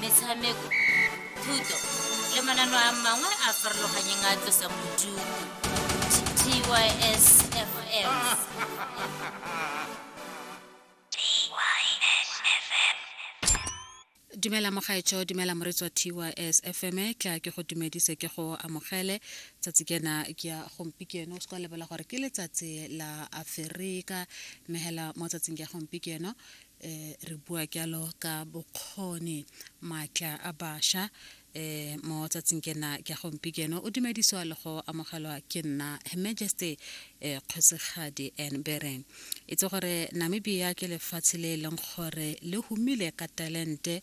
metshameko thuto le manano a mangwe a farologanyeng a tlosang bodutu tysfm dumela mogaetsho dumela moretswa tys fm ke a ke go dumedise ke go amogele tsatsi kena ke ya gompieno o se ka lebela gore ke letsatsi la aferika mmegela mo tsatsing ke ya gompieno eh, re bua kyalo ka bokgoni maatla a basha eh mo tsatsing ke na ke gompi keno o dumediswa le go amogelwa ke nna her majesty eh kgosigadi and bereng itse gore namibia ke lefatshe le e leng gore le humile ka talente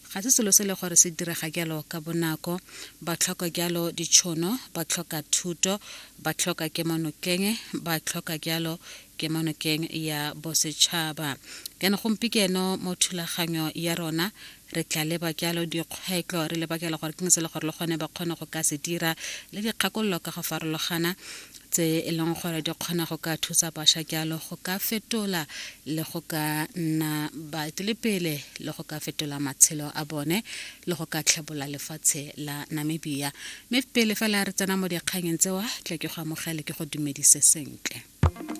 ga se selo se le gore se direga jalo ka bonako ba tlhoka jalo ditšhono ba tlhoka thuto ba tlhoka kemonokeng ba tlhoka jalo kemonokeng ya bosetšhaba jaanong gompikeno mo thulaganyo ya rona re tla leba jalo dikgwetlho re leba jalo gore ke se le gore le gone ba kgone go ka se dira le dikgakololo ka go farologana tse e leng gore di kgona go ka thusa basha jalo go ka fetola le go ka nna baetelepele le go ka fetola matshelo a bone le go ka tlhebola lefatshe la namibia mme pele fela re tsena mo dikganyeng tsewa tle ke go amogele ke go dumedise sentle